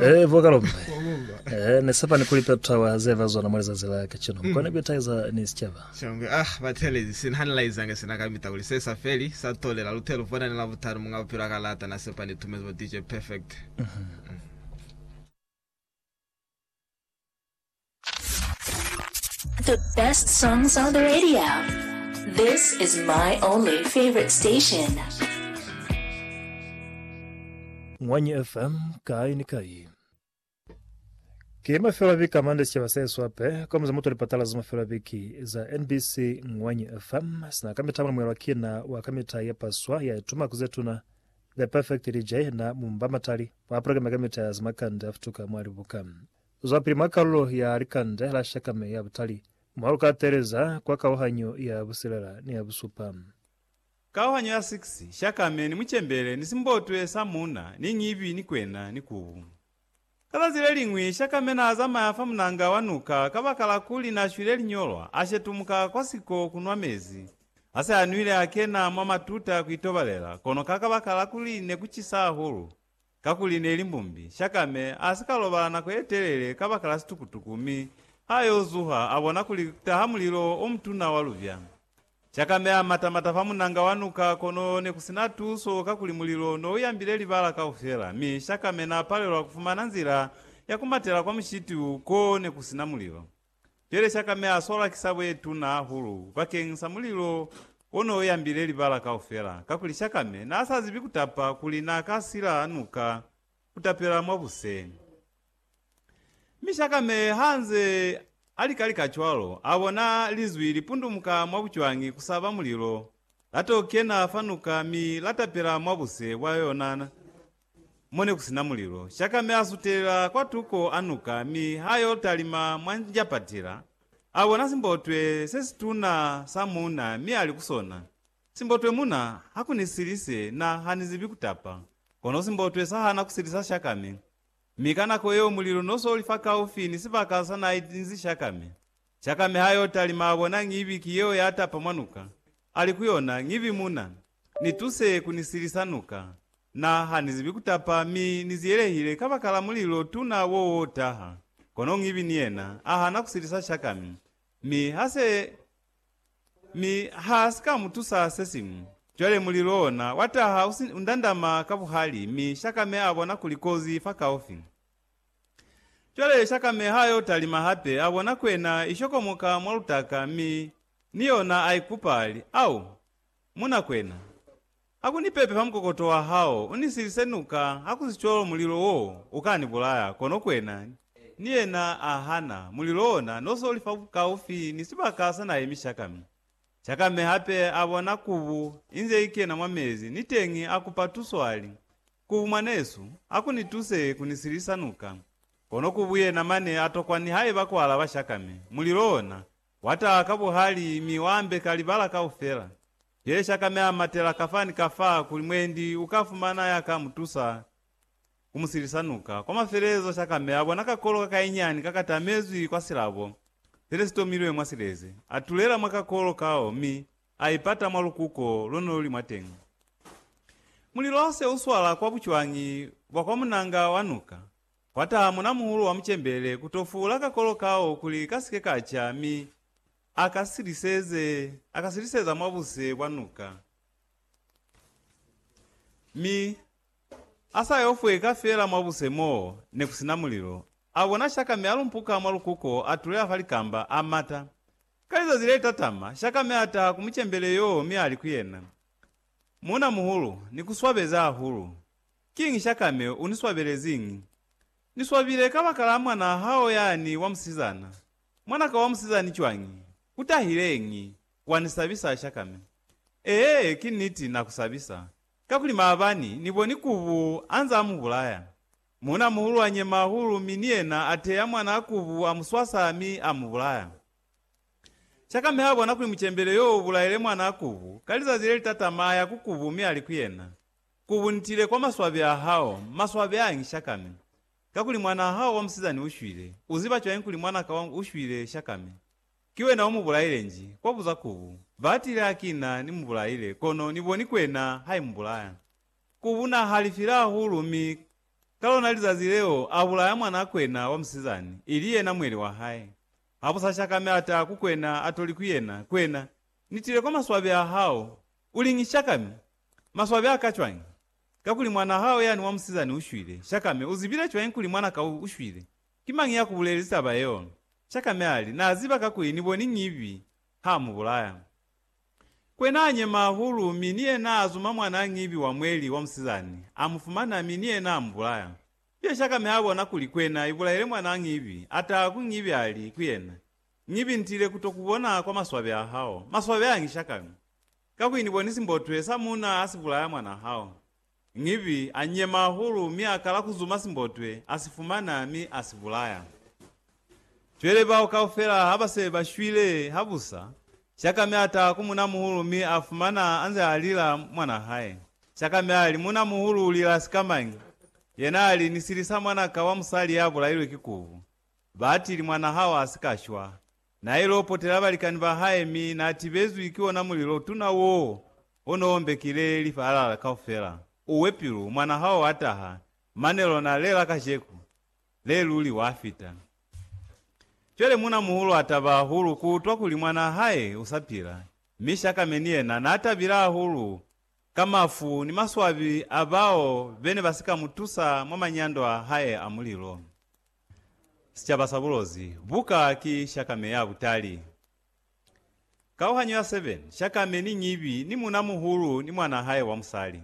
Eh, bo Kalombe. Eh, ne sepani kuli Petra wa zeva zona mo lizazi la kacino. Mukone kuitaiza ni sicaba. Shangwe, ah, batelezi, sina hanilaizange sina kamita kuli se sa feli, sa tolela, lute lu bona ni la butanu muñ'a bupilo a ka lata, na sepa ni tumezi bo DJ Perfect. The best songs on the radio. This is my only favorite station. Ngwanyi FM kai ni kai. Ke mafelo a viki a mande sicaba sa Yesu ape kwa muza muto lipatala za mafelo a viki za NBC Ngwanyi FM sina ka mita mwana mwelwa kina wa ka mita ye paswa ya ituma ku zetuna The Perfect Lija ye na mu mba matali mwa pulakeme ka mita ya za makande a futuka mwa libuka. Zwapili mwa kalulo ya likande la shakame ya butali, mwa lu ka teeleza kwa kauhanyo ya busilela ni ya busupa. Kauhanyo ya 6, Shakame ni mucembele ni simbotwe sa muuna ni nyibi ni kwena ni kubu. Ka zazi le liñwi, Shakame n'a zamaya fa munanga wa nuka kabakala kuli n'a shwile linyolwa, a shetumuka kwa siko ku nwa mezi. Ha se a nwile a kena mwa matuta ku itobalela, kono ka kabakala kuli ne ku cisa hahulu, kakuli ne li mbumbi, Shakame a si ka lobala nako ye telele kabakala situkutuku mi ha yo zuha a bona kuli ku taha mulilo o mutuna wa lubya. Cakameha mata-mata fa munanga wa nuka, kono nekusina tuso kakuli mulilo nouyambile libala kaufela, mi Shakame naapalelwa kufumana nzila ya kumatela kwa mushiti u ko nekusina mulilo. Cwale Shakame asola kisabo yetuna hahulu bakeng sa mulilo onouyambile libala kaufela, kakuli Shakame naasazibi kutapa kuli naakasila nuka kutapela mwabuse. Mi Shakame hanze alikalika cwalo, abona Linzwi lipundumuka mwa bucwangi kusaba mulilo, lato kena fa nuka mi latapela mwa buse bwa yona mo nekusina mulilo. Shakame asutelela kwa tuko a nuka mi ha yo talima mwa njapatila, abona simbotwe sesituna sa muuna mi ali ku sona, Simbotwe muna, hakunisilise, na hanizibi kutapa. Kono simbotwe sahana kusilisa Shakame. Mi ka nako yeo mulilo no so li fakaufi ni sibaka sa na itinzi Shakame. Shakame ha yo talima a bona Ngibi ki yeo ya tapa mwa nuka, a li ku yona, Ngibi muna, ni tuse ku ni silisa nuka. Na, ha ni zibi ku tapa, mi ni ziyelehile kabakala mulilo tuna wo wo taha. Kono Ngibi ni yena, a hana ku silisa Shakame. Mi ha se. Mi ha si ka mu tusa sesiñwi. Cwale mulilo ona wa taha u si u ndandama ka buhali, mi Shakame a bona kuli kozi i fakaufi. Cwale Shakame ha yo talima hape, a bona kwena i shokomoka mwa lutaka, mi ni yona a ikupa, a li, Au, muna kwena! Ha ku ni pepe fa mukokoto wa hao, u ni silise nuka, hakusicwalo mulilo wo u ka ni bulaya. Kono Kwena ni yena a hana, mulilo ona no so li kaufi ni sibaka sa na emisha kami. Chakame hape a bona kubu inze i kena mwa mezi, niteñi a kupa tuso a li, Kubu mwanesu, ha ku ni tuse ku ni silisa nuka. Kono kubu yena mane a tokwa nihaiba ku alaba Chakame, mulilo ona Wa taha ka buhali mi wa ambeka libala kaufela. Peshi a ka meha matela kafa ni kafa kuli mwendi u ka fumana ya ka mu tusa ku mu silisa nuka. Kwa mafelelezo sha ka meha bona kakolo ka kainyiani ka ka tamezwi kwa silabo se ne si tomilwe mwa sileze. A tulela mwa kakolo kao mi a ipata mwa lukuko lo ne lu li mwateñi. Mulilo se u swala kwa bucwañi bwa kwa munanga wa nuka, Kwa taha munamuhulu wa mucembele ku to fuula kakolo kao kuli ka si ke ka ca mi a ka siliseze, a ka siliseza mwa buse bwa nuka. Mi a sa yo fweka fela mwa buse mo ne ku si na mulilo, a bona shakame a lumpuka mwa lukuko a tuleha fa likamba, a mata. Ka lizazi le tatama, shakame a taha ku mucembele yoo mi a li ku yena, Munamuhulu, ni ku swabeza hahulu. Kiñi Shakame u ni swabeleziñi? Ni swabile kabakala mwanaa hao yani wa musizana. Mwanaka wa musizani cwañi? U tahileñi? Wa ni sabisa, Shakame. Ee, ki niti, na ku sabisa. Kakuli maabani, ni boni Kubu anze a mu bulaya. Muuna-muhulu a nyema hahulu mi ni yena a teya mwanaa Kubu a mu swasa mi a mu bulaya. Shakame ha bona kuli mucembele yo u bulaile mwanaa Kubu, ka lizazi le li tatama a ya ku Kubu mi a li ku yena, Ku buntile kwa maswabi a hao, maswabi a ngi shakami. Kakuli mwanaa hao wa musizani u shwile. U ziba cwañi kuli mwanaka wangu u shwile shakami? Ki wena u mu bulaile nji? Kwa buza kubu, Ba tile ha ki na ni mu bulaile, kono ni boni ku ena ha i mu bulaya. Kubu na halifile hahulu, mi ka lona lizazi leo a bulaya mwanaa kwena wa musizani, ili yena mweli wa hae. Ha bu sa shakami a taha ku kwena, a to li ku yena, Kwena, ni tile kwa maswabi a hao, u li ngi shakami? Maswabi a ka cwañi? Kakuli mwanaa hao yani wa musizani u shwile. Shakame, u zibile cwañi kuli mwana ka u shwile? Ki mañi ya ku bulelezi taba yeo? Shakame a li, Na ziba kakuli ni boni ñibi ha mu bulaya. Kwe naa nyema hahulu, mi ni yena a zuma mwanaa ñibi wa mweli wa musizani, a mu fumana, mi ni yena a mu bulaya. Pia Shakame ha bona kuli kwena i bulaile mwanaa ñibi, a taha ku ñibi a li ku yena, Ñibi, ntile ku to ku bona kwa maswabi a hao. Maswabi añi, Shakame? Kakuli Ni boni simbotwe sa muuna ha si bulaya mwanaa hao? Ngivi, a nyema hahulu mi a kala ku zuma simbotwe, a si fumana, mi a si bulaya. Cwele bao kaufela ha ba se ba shwile habusa, Shakame a taha ku muuna-muhulu mi a fumana a nze a lila mwanaa hae. Shakame a li, Muuna-muhulu u lila sikamañi? Yena a li, Ni silisa mwana ka wa musali ya bulailwe ki kubu. Ba atili, Mwanaa hao a si ka shwa. Nail'o potela balikani ba hae mi na tibezwi ki ona mulilo tuna woo o no ombekile lifaalala kaufela. Uwe pilu, mwana hao a taha, mane lona lela kajeku, le luli wa fita. Cwale muna muhulu a taba hahulu ku utwa kuli mwana hae u sa pila, mi Shakame ni yena na tabile hahulu ka mafu ni maswabi a bao bene ba si ka mu tusa mwa manyando a hae a mulilo. Sicaba sa bulozi buka ki shakame ya butali. Kauhanyo ya 7, Shakame ni ñibi ni muuna-muhulu ni mwanaa hae wa musali.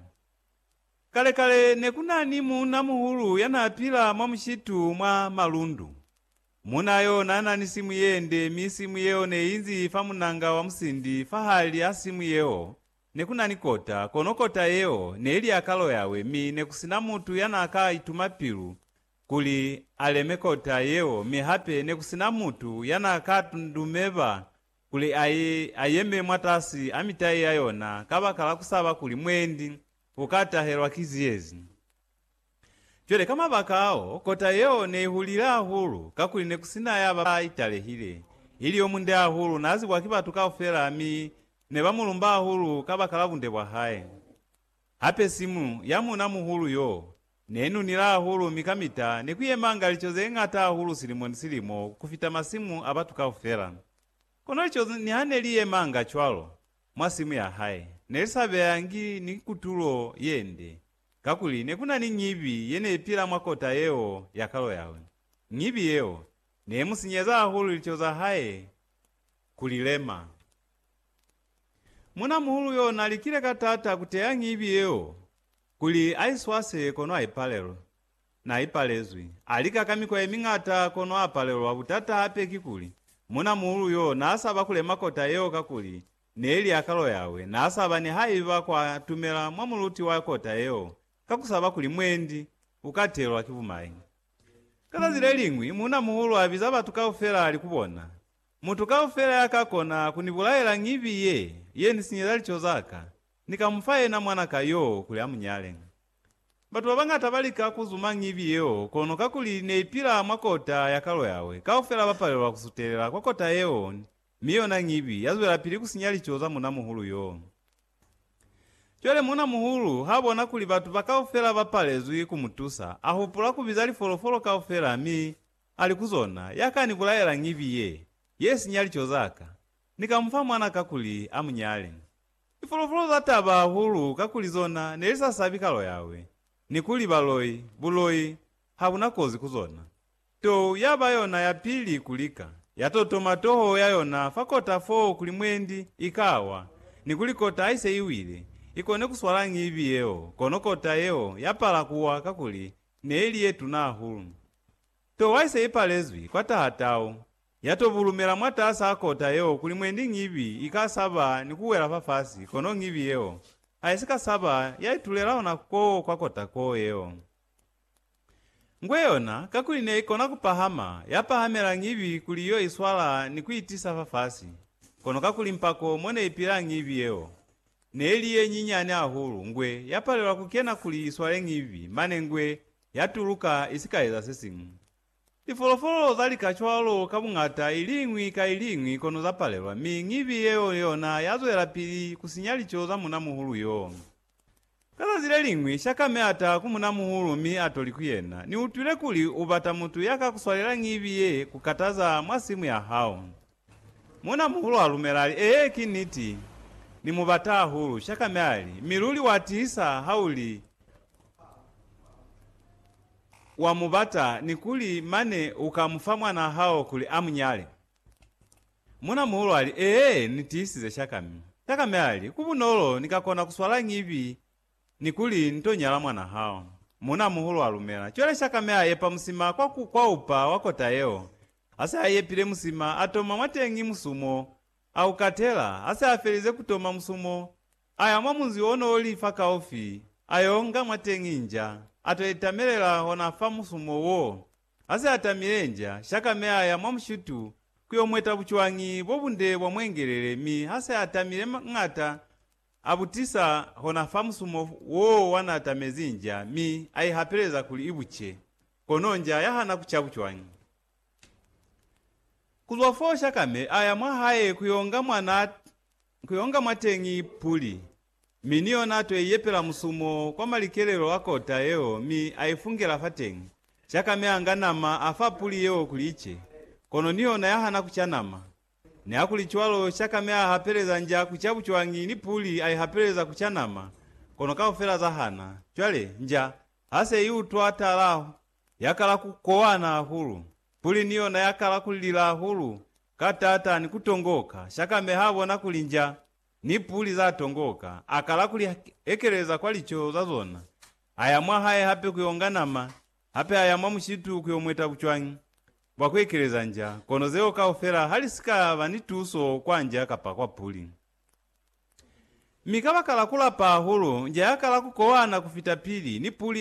Kale-kale, ne ku na ni muuna-muhulu ya naa pila mwa mushitu mwa malundu. Muuna yo naa na ni simu ye nde mi simu yeo ne i nzi fa munanga wa musindi. Fahali a simu yeo ne ku na ni kota, kono kota yeo ne li ya kalo yawe mi ne ku si na mutu ya naa ka ituma pilu Kuli a leme kota yeo, mi hape ne ku si na mutu ya n'a ka dumeba kuli a ye a yeme mwatasi a mitai ya yona kabakala ku saba kuli mwendi u ka tahelwa ki ziyezi. Cwale ka mabaka ao, kota yeo ne i hulile hahulu, kakuli ne ku si na ya ba i talehile. Ili yo munde hahulu, n'a zibwa ki batu kaufela mi ne ba mu lumba hahulu kabakala bunde bwa hae. Hape simu ya muuna muhulu yo ne nunila hahulu mi kamita ne ku yemanga lico ze ñata hahulu silimo ni silimo ku fita masimu a batu kaufela. Kono lico niha ne li yemanga cwalo mwa simu ya hae, ne li sa beyangi ni kutulo ye nde, kakuli ne ku na ni ñibi ye ne i pila mwa kota yeo ya kalo yawe. Ñibi yeo ne i mu sinyeza hahulu lico za hae ku li lema. Munamuhulu yo na likile ka taata ku teya ngibi yeo kuli a i swase kono a i palelwa. Na i palezwi. A lika ka mikwa ye miñata kono a palelwa. Butata hape kikuli, munamuhulu yo na sa ba kule makota yeo kakuli ne li a kalo yawe. Na sa ba nihaiba kwa tumela mwa muluti wa kota yeo ka ku saba kuli mwendi u ka telwa ki bumayi. Ka zazi le liñwi, munamuhulu a biza batu kaufela a li ku bona, Mutu kaufela ya ka kona ku ni bulaela ngibi ye, ye ni sinyeza lico za ka, ni ka mu fa yena mwana ka yo kuli a mu nyale. Batu ba bañata ba lika ku zuma ngibi yeo, kono kakuli ne i pila mwa kota ya kalo yawe, kaufela ba palelwa ku sutelela kwa kota yeo, mi yona ngibi ya zwelapili ku sinya lico za munamuhulu yo. Cwale munamuhulu ha bona kuli batu ba kaufela ba palezwi ku mu tusa, a hupula ku biza lifolofolo kaufela mi Ali ku zona, Ya ka ni bulaela ngibi ye, ye sinya lico za ka, Ni ka mu fa mwana kakuli a mu nyale. Lifulufulu za taba hahulu kakuli zona ne li sa sabi kalo yawe, ni kuli baloi, buloi, ha bu na kozi ku zona. Tou ya ba yona ya pili ku lika, ya totoma toho ya yona fa kota foo kuli mwendi i ka wa, ni kuli kota ha i se i wile, i kone ku swala ngibi yeo, kono kota yeo ya pala ku wa kakuli neili yetuna hahulu. To waise ipalezwi kwa taha tau, yato bulumela mwataas'a kota yeo kuli mwendi ñibi ika saba ni kuwela fafasi kono ñibi yeo aisika saba yaitulela hona koo kwa kota koo yeo. Ngwe yona, kakuli neikona kupahama, yapahamela ñibi kuli yo iswala ni kuitisa fafasi, kono kakuli mpako moneipila ñibi yeo. Ne li ye nyinyani hahulu, ngwe ya palela ku kena kuli i swale ñivi, mane ngwe ya tuluka i si ka eza se siñwi. Lifolofolo za lika cwalo ka buñata i liñwi ka i liñwi kono za palelwa, mi ñivi yeo yona ya zwelapili ku sinya lico za munamuhulu yoo. Ka zazi le liñwi, Shakame a taha ku munamuhulu mi a to li ku yena, Ni utwile kuli u bata mutu ya ka ku swalela ñivi ye ku kataza mwa simu ya hao. Muuna-muhulu a lumela, ali, Ee, ki niti. Ni mu bata hahulu. Shaka mi ali, Mi luli wa tiisa ha u li wa mu bata, ni kuli mane u ka mu fa mwanaa hao kuli a mu nyale? Muuna-muhulu ali, Ee, ni tiisize, shaka mi. Shaka mi ali, Ku bunolo, ni ka kona ku swala ñibi ni kuli ni to nyala mwanaa hao. Muuna-muhulu a lumela. Cwale shaka mi a epa musima kwa ku, kwa upa wa kota yeo. Ha se a yepile musima, a toma mwateñi musumo. A u katela. Ha se a felize ku toma musumo, a ya mwa munzi o n'o li fakaufi, a y'o nga mwateñi nja, a t'o itamelela hona fa musumo w'o. Ha se a tamile nja, shaka mi a ya mwa mushutu ku y'o mweta bucwañi bo bunde bwa mwengelele, mi ha se a tamile m'ata, A butisa hona fa musumo woo wa n'a tamezi nja mi a i hapeleza kuli i buce, kono nja ya hana ku ca bucwañi. Ku zwa foo Shakame a ya mwa hae ku y'o nga mwa n'a ku y'o nga mwateñi puli, mi ni yona a t'o iyepela musumo kwa malikelelo a kota yeo mi a i fungela fateñi. Shakame a nga nama a fa puli yeo kuli i ce, kono ni yona ya hana ku ca nama. Nihakulicwalo, shaka mi a hapeleza nja ku ca bucwangi ni puli a i hapeleza ku ca nama, kono kaufela za hana. Cwale, nja ha se i utwa tala, ya kala ku kowana hahulu. Puli ni yona ya kala ku lila hahulu ka t'ata ni ku tongoka. Shaka mi ha bona kuli nja ni puli za tongoka, a kala ku li ekeleza kwa lico za zona, a ya mwahae hape ku yo nga nama. Hape aya mwa mushitu ku yo mweta bucwañi bwa ku ekeleza nja, kono zeo kaufela ha li si ka ba ni tuso kwa nja kapa kwa puli. Mi kabakala ku lapa hahulu, nja ya kala ku kowana ku fita pili, ni puli